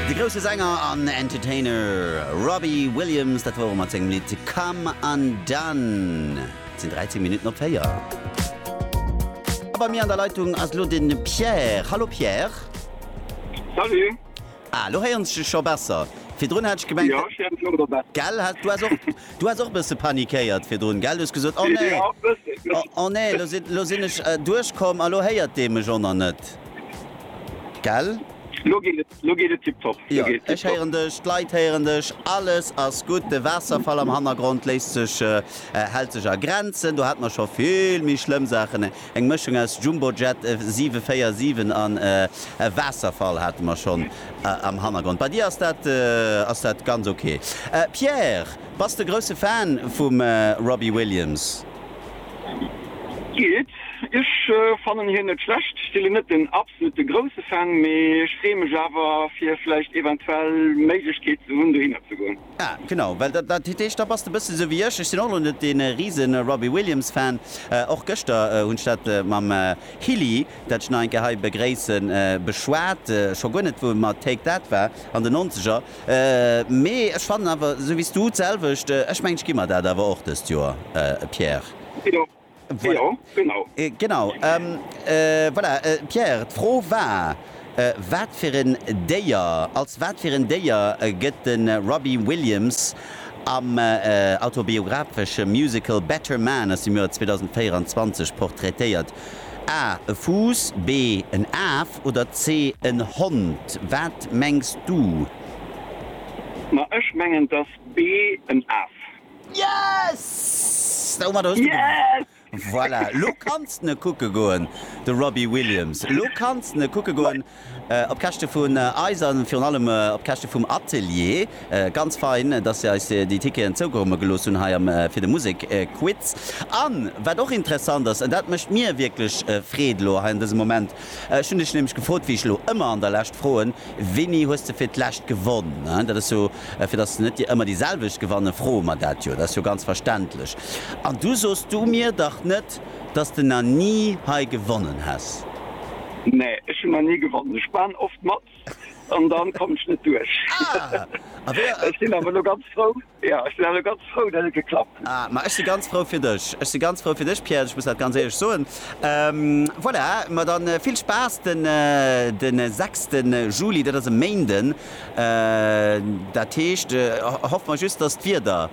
De grousse Sänger an Entertainer Robbie Williams, dat wor e mat sengem Lidd Come Undone. Et sinn 13 Minutten op 4. A bei mir an der Leitung ass elo de Pierre. Hallo Pierre. Salut. Ah, elo héieren ech dech scho besser. Virdrun hat ech gemengt. Jo, ech héieren dech elo wieder besser. Gell, hat, du has och, du has och e bësse panikéiert virdrun, gell? Du hues gesot, Oh nee, oh nee, elo sinn, elo sinn ech duerchkomm a elo héiert dee mech och nach net. Gell? Lo geet et, lo geet et tiptop. Jo, ech héieren dech, d'Leit héieren dech, alles ass gutt. De Waasserfall am Hannergrond léisst sech, hält sech a Grenzen. Do hate mer scho vill méi schlëmm Saachen. Eng Mëschung aus Jumbojet 747 an e Waasserfall hate mer schonn am Hannergrond. Bei dir ass dat, ass dat ganz ok. Pierre, bass de grousse Fan vum Robbie Williams? Geet. Ech fannen hien net schlecht, ech sinn net den absolute grousse Fan, mee ech freeë mech awer fir vläicht eventuell Méiglechkeet ze hunn dohinner ze goen. Ah genau, well dat dat heescht da bass de bësse sou wéi ech, ech sinn och elo net dee rise Robbie Williams Fan. Och gëschter hunn ech dat mam Hilly, dat ech nach eng Kéier hei begréissen, beschwat, scho guer net wou et mat Take That war an de Nonzeger, Mee ech fannen awer, esou wéi s du, d'selwecht. Ech mengen, ech gi mer dat awer och dëst Joer, Pierre. Jo, jo, genau. Genau. Voilà, Pierre, d'Fro war, Wat fir en Déier, als wat fir en Déier gëtt de Robbie Williams am autobiografesche Musical Better Man aus dem Joer 2024 portraitéiert? A, E Fuuss, B, En Af oder C, En Hond? Wat mengs du? Ma ech mengen dass B, En Af. Yes! Domat hues du gewonnen. Voilà, lo kanns de kucke goen, de Robbie Williams. Lo kanns de kucke goen. Op Käschte vun eis a virun allem op Käschte vum Atelier. Ganz fein, dass se eis déi Ticketen zougerumme gelooss hunn hei am fir de Musekquiz. An wat och interessant ass, an dat mécht mir wierklech Freed elo hei an dësem Moment, ech hunn dech nämlech gefrot, wéi ech elo ëmmer an der Lescht froen, Wéini hues de fir d'lescht gewonn? Dat ass jo, fir dass net déi ëmmer déi selwecht gewanne, froe mer dat jo, dat ass jo ganz verständlech. An du soos du mir dach net, dass de na ni hei gewonnen häss? Nee, ech hun na ni gewonnen. Ech maan oft mat an dann kommen ech net duerch. Ech sin awer lo ganz frou, jo, ech sin awer lo ganz frou, dat et geklappt huet. Ah, ma ech si ganz frou fir dech. Ech si ganz frou fir dech, Pierre, ech muss dat ganz éierlech soen. Voilà, ma dann vill Spaass den 6 Juli, dat ass e Méinden. Dat heescht, hoffen mer just, dass d'Wieder.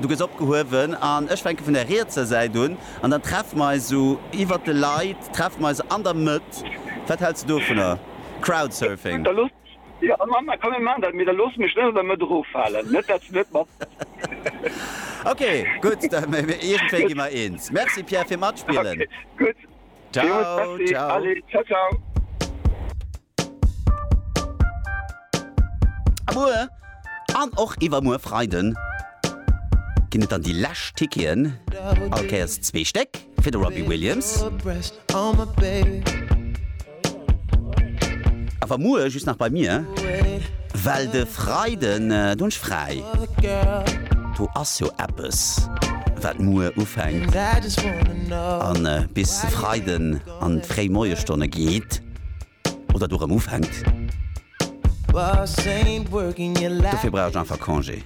Du gëss opgehuewen an ech fänke vun der rietser Säit un an dann treffe mer eis esou iwwert de Leit, treffe mer eis an der Mëtt. Wat häls de dovunner? Crowdsurfing. Da looss, jo am Anfang, komm mir maachen dat, mee da looss mech net an der Mëtt eroffalen, net dat s du net matmaass. Ok, gutt, da iergendwéi gi mer eens. Merci Pierre fir matspillen. Ok, gutt. Ciao, ciao. A muer an och iwwermuer Freiden ginn et dann déi lescht Ticketen, all Kéiers zwee Stéck, fir de Robbie Williams. Awer muer just nach bei mir, well de Freiden, do hunn ech fräi. Do ass jo eppes wat muer ufänkt an bis de Freiden an d'fréi Moiesstonne geet oder do rëm ufänkt. Dofir brauch ech einfach Congé.